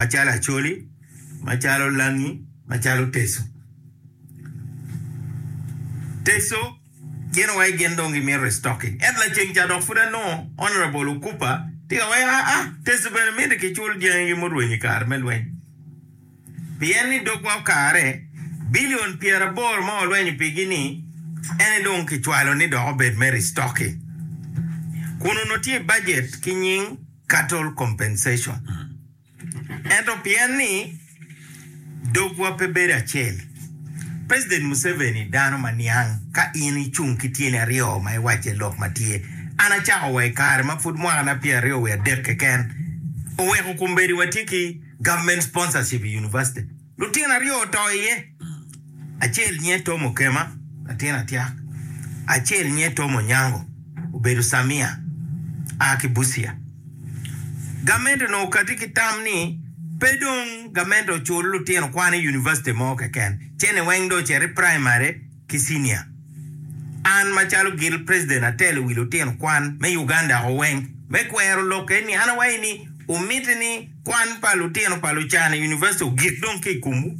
macalo acholi, macalo langi, macalo teco. Teco gin wai gin dong gimito restocking ento laceng ca dok pud anongo Honourable Okupa tye ka waco aa teco bene miti kicul dyangi gi murwenyo i kare me lweny pien ni dogwa okare billion pyeraboro ma walwenyo pigi ni en aye dong kicwalo ni dok obed me restocking kun onongo tye i budget ki nying cattle compensation. Ento pien ni dogwa pe bedo acel, President Museveni dano ma niang ka in icung ki tyeni aryo ma iwacce lok ma tye. An acako wa i kare ma pud mwaka na pyer aryo wiye adek keken oweko kombedi watye ki government sponsorship i University. Lutino aryo oto iye, acel nyinge Tom Okema, latin atyak, acel nyinge Tom Onyango, obedo Samia, a ki Busia. Gamente onongo okati ki tam ni pe dong gamente ocul lutino kwan i univaciti mo keken, cene weng dong ocito i praimari, ki cinia. An macalo gil president atelo wi lutino kwan me Uganda o weng me kwero lok eni. An awayi ni wumiti ni kwan pa lutino pa Lucana University ogik dong ki ikomwu.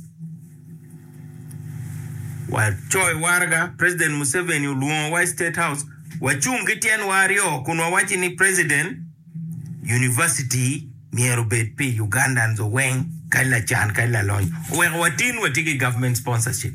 Wacoyo waraga, president Museveni olwongo wa i state house, wacung ki tyen wa aryo kun wawaci ni president University myero obed pi Ugandans o weng kadi lacan kadi lalony oweko watin watye ki government sponsorship.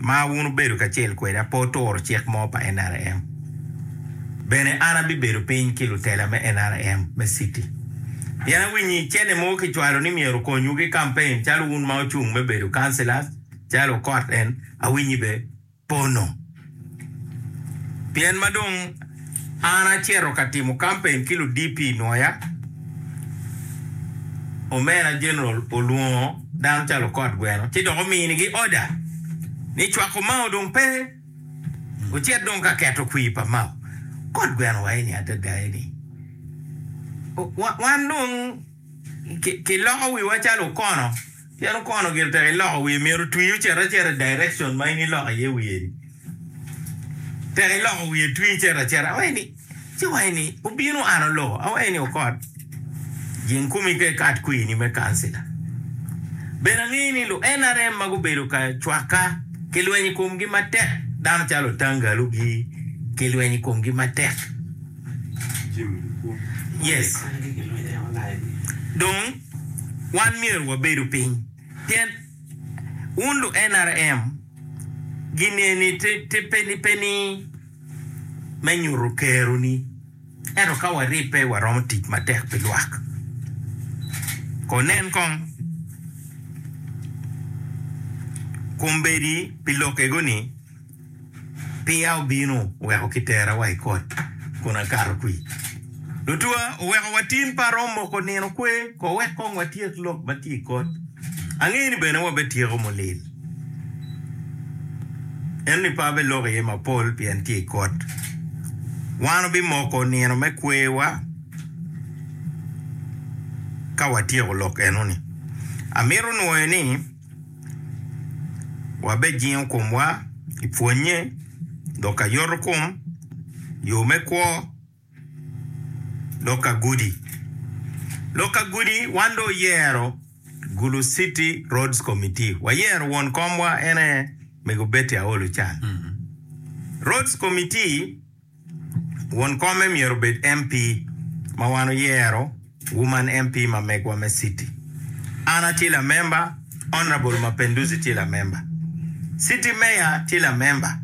ma wun wubedo kacel kweda pe wuturo cik mo pa NRM, bene an abibedo piny ki lutela me NRM me citi. Pien awinyo i cene mogo kicwalo ni myero okonywu ki kampen calo wun ma ocung me bedo councillors calo okot en, awinyi be pono. Pien ma dong an acito ka timo kampen ki ludp i Nwoya, Omera General olwongo dano calo okot gweno ci dok ominigi oda ni cwako Mao dong pe, ocit dong ka keto kwir pa Mao. Kot gweno wa eni adada eni, wan dong. Kiloko wiwa calo okono, pien okono gire tek iloko wiye, myero otwi ocit acita i direction ma in iloko iye wiye-ni. Tek iloko wiye twi icito acita, awaci ni, ci wa eni obino an oloko, awaci ni okot, jing kumi ka ikat kwini me kancila. Bene angeyo ni lu NRM ma gubedo ka cwakka kilweny i komgi matek, dano calo Otangalu gi kilweny i komgi matek. Dong, wan myero wabedu piny, pien wun lu-NRM gin eni pe ni me nyuto kero-ni, ento ka waribbe waromo tic matek pi lwak. Ko nen kong kombeddi pi lokego-ni. Piya obino oweko kitera wa i kot kun akato kwi. Lutwa oweko watin pa arom moko nino kwe ko wek kong watyek lok ma tye i kot. Angeyo ni bene wabetyeko mulil. Ento ni pe abeloko iye mapol pien tye i kot. Wan obimoko nino me kwewa ka watyeko lok eno ni. Amito nwoyo ni. wabejingo komwa i pwonnye dok ka yoto kom, yo me kwo, lok ka gudi. Lok ka gudi wan dong oyero Gulu City Roads Committee. Wayero won komwa en aye Mego Betty Aol Ocan. Roads Committee. Won kome myero obed MP ma wan oyero, Woman MP ma megwa me city. An atye lamemba, Honourable Mapenduzi tye lamemba, City Mayor tye lamemba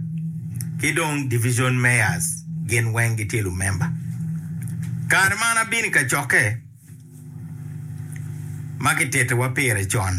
ki dong Division Mayors gin weng gitye lumemba. Kare ma an abino i kacokke ma kitittiwa pire con,